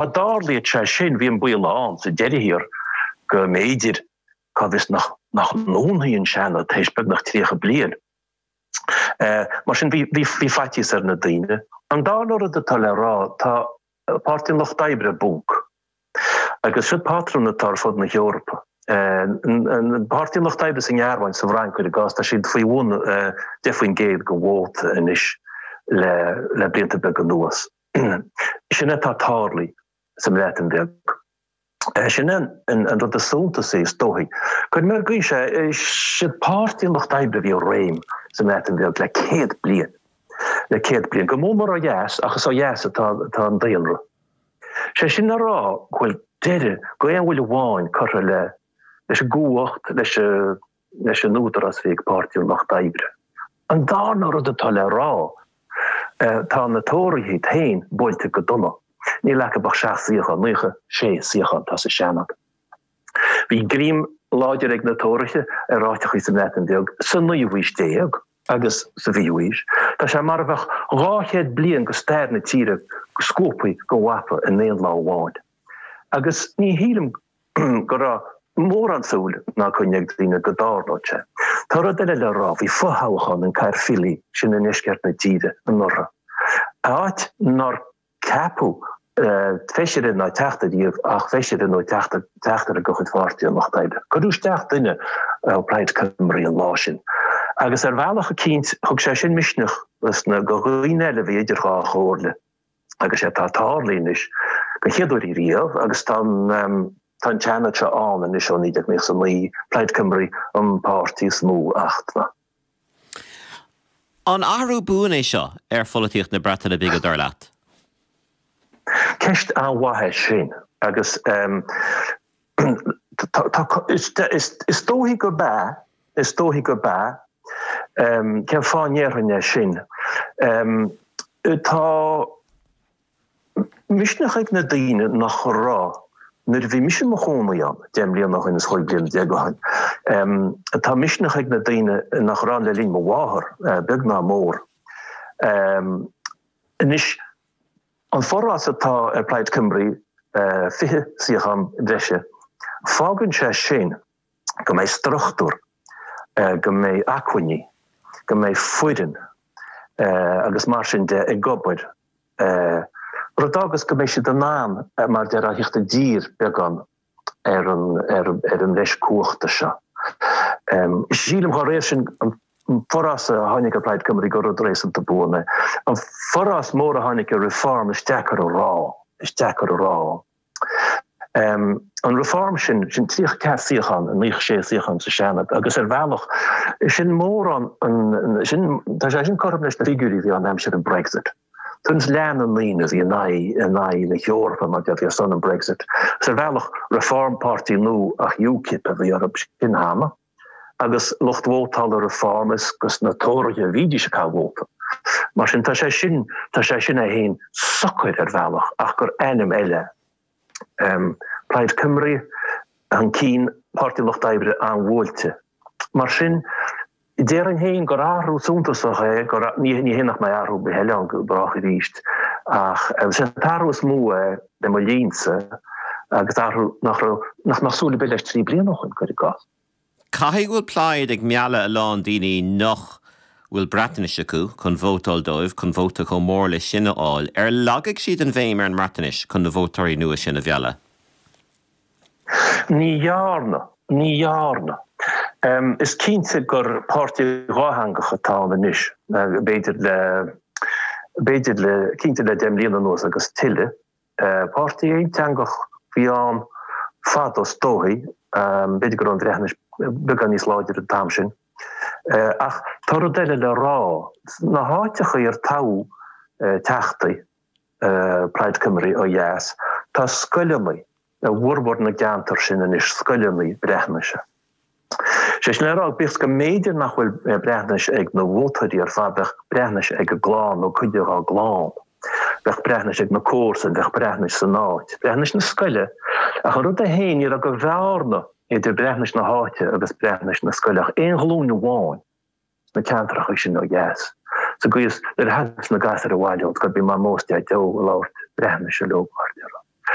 Dá dtarlaíodh sé sin, bhí an baol ann, sa deireadh thiar, go mb'fhéidir, cá bhfios, nach ndúnfaí an Seanad tar éis beagnach tríocha bliain. Mar sin, bhí faitíos ar na daoine. An darna rud atá le rá, tá Páirtí an Lucht Oibre i bponc. Agus seo patrún atá ar fud na hEorpa. Páirtí an Lucht Oibre sa nGearmáin, sa bhFrainc, cuir i gcás, tá siad faoi bhun deich faoin gcéad den vóta anois le blianta beaga anuas. Sin atá tarlaithe sa mBreatain Bheag. Sin é an rud is suntasaí, is dóichí. Cuirim ar an gcaoi seo é, siad páirtí an lucht oibre a bhí i réim sa mBreatain Bheag le céad bliain, le céad bliain, go mór mór ó dheas ach is ó dheas atá an daonra. Sé sin le rá go bhfuil deireadh d'aon bhuille amháin curtha leis an gcumhacht, leis an. leis an údarás a bhí ag Páirtí an Lucht Oibre. An darna rud atá le rá, tá na Tóraithe féin buailte go dona, níl acu ach seacht suíochán, naocha sé suíochán atá sa Seanad. Bhí greim láidir ag na Tóraithe ar áiteachaí sa mBreatain Bheag sa naoú haois déag agus sa bhfichiú haois. Tá sé mar a bheadh dhá chéad bliain de stair na tíre scuabtha den mhapa in aon lá amháin. Agus ní shílim go. go raibh mórán súil ná coinne ag daoine go dtarlódh sé. Tá rud eile le rá, bhí fothoghchán in Caerphilly, sin i ndeisceart na tíre, anuraidh, áit nár ceapadh feisire ná teachta riamh ach feisire nó teachtaire de chuid Pháirtí an Lucht Oibre. Cuireadh isteach duine ó Plaid Cymru an lá sin agus ar bhealach eicínt thug sé sin misneach do dhaoine eile a bhí idir dhá chomhairle. agus sé atá tarlaithe anois den chéad uair ariamh agus tá an tá an Seanad seo ann anois ó 1999, Plaid Cymru an páirtí is mó, a Fhachtna. An athrú buan é seo ar pholaitíocht na Breataine Bige dar leat? Ceist an-mhaith é sin agus Is dóichí gurb ea, is dóichí gurb ea. Cén fáth a ndéarfainn é sin? Tá misneach ag na daoine nach raibh nuair a bhí mise i mo chónaí ann deich mbliana ó shin, is cúig bliana déag ó shin. Tá misneach ag na daoine nach raibh ann le linn mo mháthar, beag ná mór. Anois, An forás atá ar Plaid Cymru, 20 suíochán breise, fágann sé sin go mbeidh struchtúr, go mbeidh acmhainní, go mbeidh foireann agus mar sin de ag obair, rud agus go mbeidh siad in ann, mar a deir, a thíocht i dtír beagán. ar an bhreis cumhachta seo. Sílim dá réir sin an forás a tháinig ar Plaid Cymru gur rud réasúnta buan é. An forás mór a tháinig ar Reform is deacair a rá, is deacair a rá. An Reform sin, sin tríocha ceathair suíochán, nó naocha sé suíochán sa Seanad, agus ar bhealach sin mórán, sin, tá sé sin cothrom leis na figiúirí a bhí ann aimsir an Brexit. Tuairim is leath na ndaoine a bhí in aghaidh, in aghaidh na hEorpa mar déarfá, a bhí ar son an Brexit. Is ar bhealach Reform páirtí nua ach UKIP a bhí orthu sin cheana. Agus lucht vótála Reform is dos na Tóraithe a bhídís ag caitheamh vóta. Mar sin tá sé sin, tá sé sin é féin socair ar bhealach ach gur ainm eile Plaid Cymru chun cinn, Páirtí Lucht Oibre an-bhuailte. Mar sin, déarfainn féin gur athrú suntasach é, ní hé nach mbeidh athrú ar bith eile ann go brách arís, ach is é an t-athrú is mó é le mo linnse agus athrú nach raibh, nach mbeadh súil ar bith leis trí bliana ó shin, cuir i gcás. Caithfidh go bhfuil Plaid ag mealladh a lán daoine nach bhfuil Breatnais acu chun vótáil dóibh chun vóta chomh mór leis sin a fháil. Ar lagaigh siad an bhéim ar an mBreatnais chun na vótóirí nua sin a mhealladh? Ní dhearna. Ní dhearna. Is cinnte gur páirtí dhátheangach atá ann anois, b'fhéidir le, b'fhéidir le, cinnte le deich mbliana anuas agus tuilleadh. Páirtí aonteangach a bhí ann fadó is dóigh, b'fhéidir go raibh an Bhreatnais beagán níos láidre an t-am sin. Ach tá rud eile le rá, sna háiteachaí ar toghadh teachtaí Plaid Cymru ó dheas, tá scoileanna i bhformhór na gceantar sin anois, scoileanna Breatnaise. Sé sin le rá, bíodh is go mb'fhéidir nach bhfuil Breatnais ag na vótóirí ar fad, bheadh Breatnais ag a gclann nó cuid dhá gclann. Bheadh Breatnais ag na comharsain, bheadh Breatnais san áit, Breatnais na scoile. Ach an rud é féin, ní raibh de bhearna idir Breatnais na háite agus Breatnais na scoile ach aon ghlúin amháin sna ceantracha sin ó dheas, sa gcaoi is, nuair a thagadh na gasúir abhaile ón scoil, bhí Mamó is Deaideo ag labhairt Breatnaise leo mar déarfá.